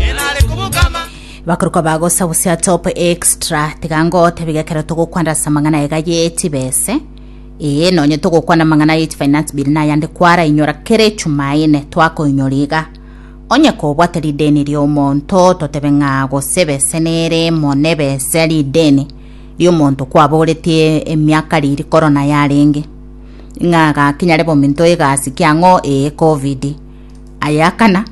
enare kobokama. Bakorokwa bagosa busia top extra tiga ngotebe gekero togokwanda ase amang'ana aye ga yetibese ee nonye togokwana amang'ana ye finance bill na ayande kwara inyora kera echumaine twakoinyora iga onye kobwate rideni riomonto totebe ng'a gose bese nere emo nebese rideni riomonto kwaboretie emiaka riri korona yarenge ng'a gakinyare bominto egasi kiang'o ee covid Aye akana,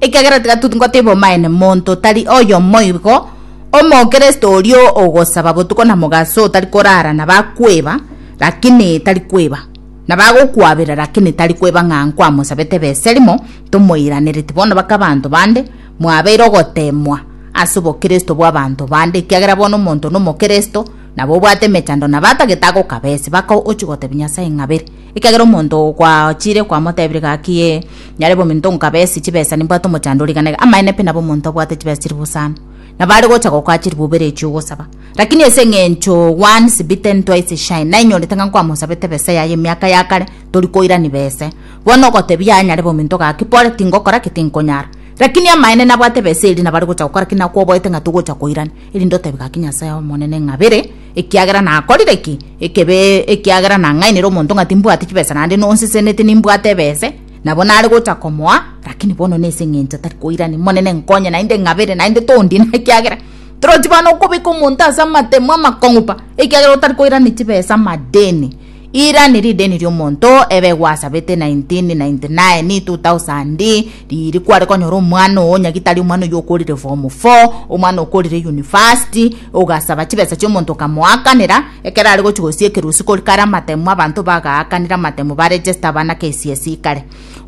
Ekiagera tiga toteba omaene, monto tari oyomo igo, Omokristo oria ogosaba botuko na mogaso otari korara na bakweba, lakini tari kweba, na bagokwabera, lakini tari kweba ng'a nkwamosabete ebesa erimo, tomoiranereti bono baka abanto bande, mwabeire ogoteemwa ase obokristo bw'abanto bande, ekiagera bono omonto nomokristo, nabo obwate emechando, nabo atagete agokabese, baka ochia gotebia Nyasae ng'a bere. Ekiagera omonto gwachiire kwamotebire gaki ee, nyare bominto nkabesi chibesa nimbwate omochando origanage. Amaene pi nabo omonto abwate chibesa chiri bosano, nabo are gocha gokoa chiri bobere echio ogosaba. Rakini ase eng'encho once bitten twice shy, nainyorete ng'a nkwamosabete besa yaye emiaka ya kare, tori koirani bese. Bono ogotebia aye nyare bominto gaki, pole, tingokora ki, tinkonyara. Rakini amaene nabwate besa eria nabo are gocha gokora ki, nakwoboete ng'a togocha koirani, erinde otebi gaki Nyasae Omonene ng'a bere, Ekiagera nakorire ki? Ekebe, ekiagera nang'ainire omonto ng'a timbwati chibesa naende nonseseneti nimbwate ebese, nabo nare gocha komoa, lakini bono nese ng'encho tari koirani. Monene nkonye naende ng'abere, naende tondine, ekiagera torochi bana okobeka omonto ase amatemo amakong'u pa, ekiagera otari koirani chibesa amadeni. Ira ni rideni ri'omonto ebe gwasabete 1999, 2000, riiri kware konyora omwana oo onye gitari omwana oyio okorire form four, omwana okorire university, ogasaba chibesa chi'omonto okamoakanera, ekero are gochia gosia ekerusi korika are amatemu abanto bagaakanire amatemu ba register abana KCSE kare.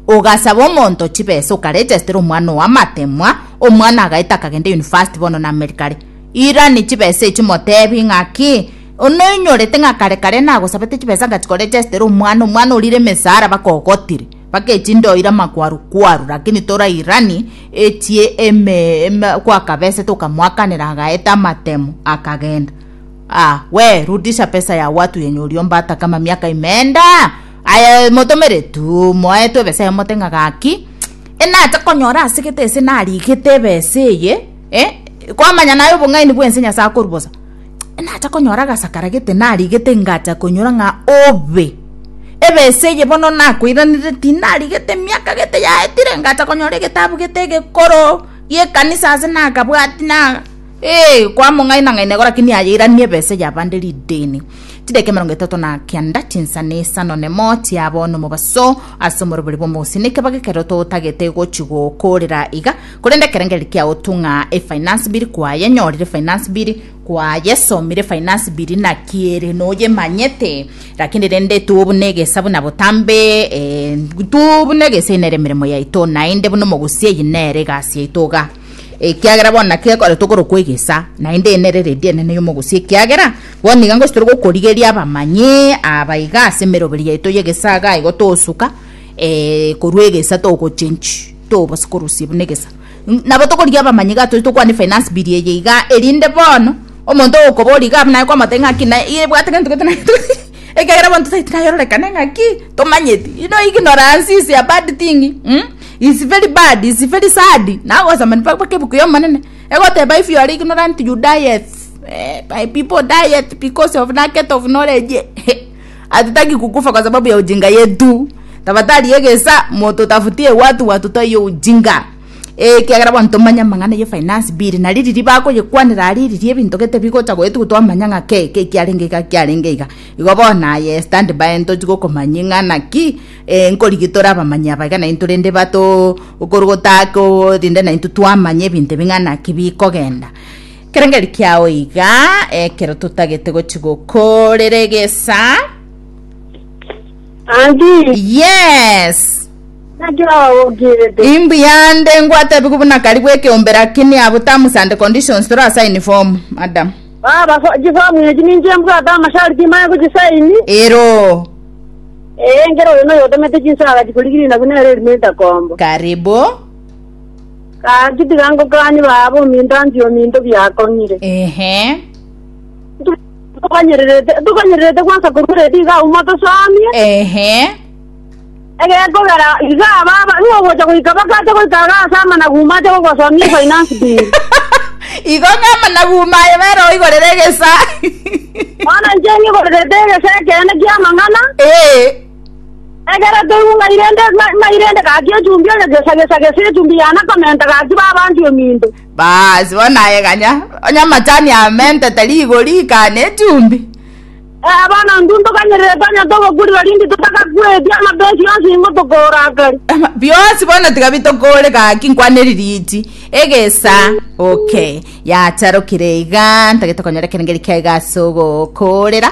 Ogasaba omonto chibesa okaregestera omwana oo amatemwa, omwana agaeta akagenda university bono na America are. Ira ni chibesa echio motebi ng'aki? Onoinyorete ng'a kare kare nagosabete chibesa ng'a chikore chiasetera omwana, omwana orire emesara bakogotire, bakechi ndoire amakwaru kwaru, rakini torairani echi eme eme kwakabesete okamoakanera agaeta amatemo akagenda. Aah we rudisha pesa ya watu yenye oriomba ata kama miaka imeenda aye motomere tuu moe tu ebesa emote ng'a gaki mch enacha konyora asegete ase narigete ebesa eye eh kwamanya naye obong'aini bwense nyasae akorubosa. natakonyora agasakara gete narigete ngacha konyora ng'a obe ebesa eye bono nakoiraneretie tinarigete emiaka gete yaetire ngacha konyora egetabu gete egekoro gi'ekanisa ase nakabwati na eeh kwamong'aina ng'aina igo lakini aye airanie ebesa eye abande rideni chidaki emerongo etato na kianda chinsana isano na emoti yabo nomobaso ase omorobori bw'omogusii niki bagekera ototagete gochi gokorera iga. Korende ekerengeri kia otung'a e finance bill kwaye nyorire finance bill kwaye somire finance bill naki ere noyemanyete lakini rende tubu negesa buna botambe eh, tubu negesa inere emeremo yaito naende buna omogusi eyi nere egasi yaito iga ekiagera bono naki ekore tokoro kwegesa naende enere redi enene yomogusi ekiagera bono iga ngosi tore gokorigeria abamanyi aba iga ase emeroberi yaito yegesaga igo tosuka eh, korwa egesa togochenchi tobase korusia buna egesa N- nabo tokorigia abamanyi iga tore tokwane finance bill eye iga erinde bono omonto okobori iga buna kwamotebia ng'aki na ebwate gento gete na gento ekiagera bono totaete nayerorekane ng'aki tomanyeti you know ignorance is a bad thing mm? is very bad is very sad nagosoma mpaka mpaka ebuku y'omonene egoteba if you are ignorant you diet eh, my people diet because of lack of knowledge Hatutaki kukufa kwa sababu ya ujinga yetu. Tabatari egesa motutafutie watu watu toi ujinga. Eh kiagera bonto tomanya mang'ana ye finance bill na riri ribako ye kwanera ari riri ebinto gete bigocha goetu twamanya ng'a ke ke kiarenge iga kiarenge iga. Igo bona aye stand by entochi gokomanyi ng'a naki eh nkorigi tore abamanyi abaiga na intore ndi bato okorogota ko rinde na intu twamanya ebinto bing'ana kibikogenda. Kerengeri kiao iga, ekero totagete gochi gokorera egesa. Auntie, Yes. naki ogokirete? Imbuya nde ngwatebigu buna kari bw'ekeombe lakini abu terms and conditions torasaini form madam. Baba, fo- chifomu echi ninche mbwate amasharti maya gochisaini. Ero. Ee, nkere oyo noyo otemete chinsaga chikorigirina buna ere erimenta kombo. Karibu. Gaki tiga ngokanye baaba ominto anche ominto biakong'ire. Ehe. Tokonyererete, tokonyererete gwansa korwa redi iga aumo tosamie. Ehe. Egekogera iga baba nigo ogocha goika bakacha goika iga ase amanagu uma ache gogosomia finance bill. Igo ng'ama naguma aye bere oigorere egesa. Bono inche ng'igorerete egesa ekeene ki'amang'ana, Eh. Egere toiunga irende ma- mairende gaki echumbi oyo gesa gesa gesa echumbi yana komenta gaki babanti ominto. Baasi, bono aye ganya, onye amachani amentete rigori ikane echumbi. Eh, bono intwe ntoganyerere tonya togokurira rindi totagakweti amabensi yonsi ingo tokorakari. Ama- biosi bono tiga bitokore gaki nkwaneri riti egesa okay yacharokire iga ntagete konyora ekero ngeri kiaiga ase ogokorera